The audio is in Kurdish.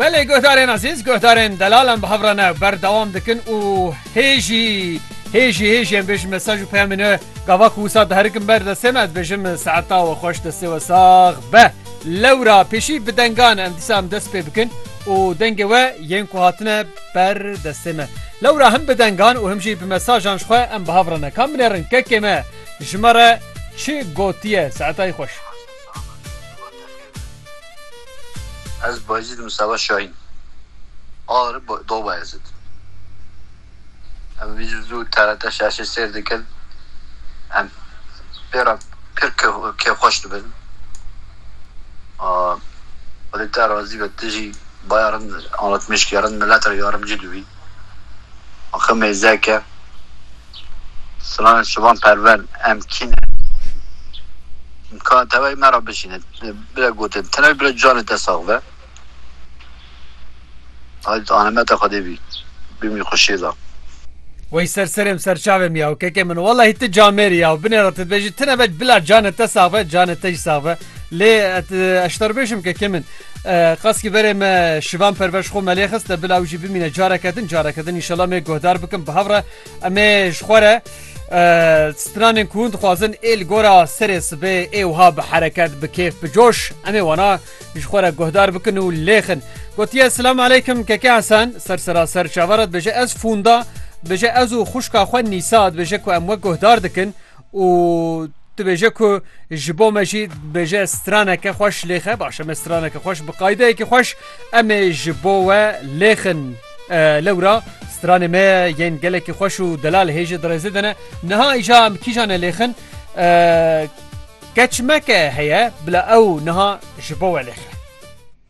Belê guhdarên ezîz, guhdarên delalan bi hev re ne berdewam dikin û hê jî hê jî hê jî em bêjin mesaj û peyamên we gava ku wisa diherikin ber destê me ez bêjim saeta we xweş destê we sax be. Lewra pêşî bi dengan em dîsa em dest pê bikin û dengê we yên ku hatine ber destê me. Lewra him bi dengan û him jî bi mesajan ji xwe em bi hev re ne. Ka binêrin kekê me ji me re çi gotiye saetayî xweş. Ez Bayezîd im Seba Şahîn a li Do Bayezîd em vîdîo zû TRT şaşê sêr dikin em pê re pir kêfxweş dibin a xwedê te razî be tu jî baya rind anlatmêşkî ya rind milet re ya rimcî dibî axir mêzeke Slan şivan perven em kî ne. Ka tevayî me ra bişîne bire gotin tenê bire canê te sax be. Hadi tu anemeta Xwedê bî. Bimî xwe şêr da. Wey ser serêm ser çavêm ya keke min wellahî tu camêrî ya binê ra tu dibêjî tine be bila canê te sax be canê te jî sax be lê ez ji te re bêjim keke min qasî berê me şivan perver ji xwe me lê xist bila ew jî bimîne careke din careke din înşela me guhdar bikim bi hev re Em ê ji xwe re stranên ku hûn dixwazin ê li gora serê sibê ê wiha bi hereket bi kêf bi coş em ê wana ji xwe re guhdar bikin û lêxin. Gotiye Silam aleykim keke Hesen ser seraser çavara dibêje ez fûnda dibêje ez û xuşka xwe Nîsa dibêje ku em wek guhdar dikin û dibêje ku ji bo me jî dibêje straneke xweş lêxe baş em straneke xweş bi qaydeyekî xweş emê ji bo we lêxin lewra stranê me yên gelekî xweş û delal hêji dirêzê dene niha îja em kîjan e lêxin keçmeke heye bila ew niha ji bo we lêxe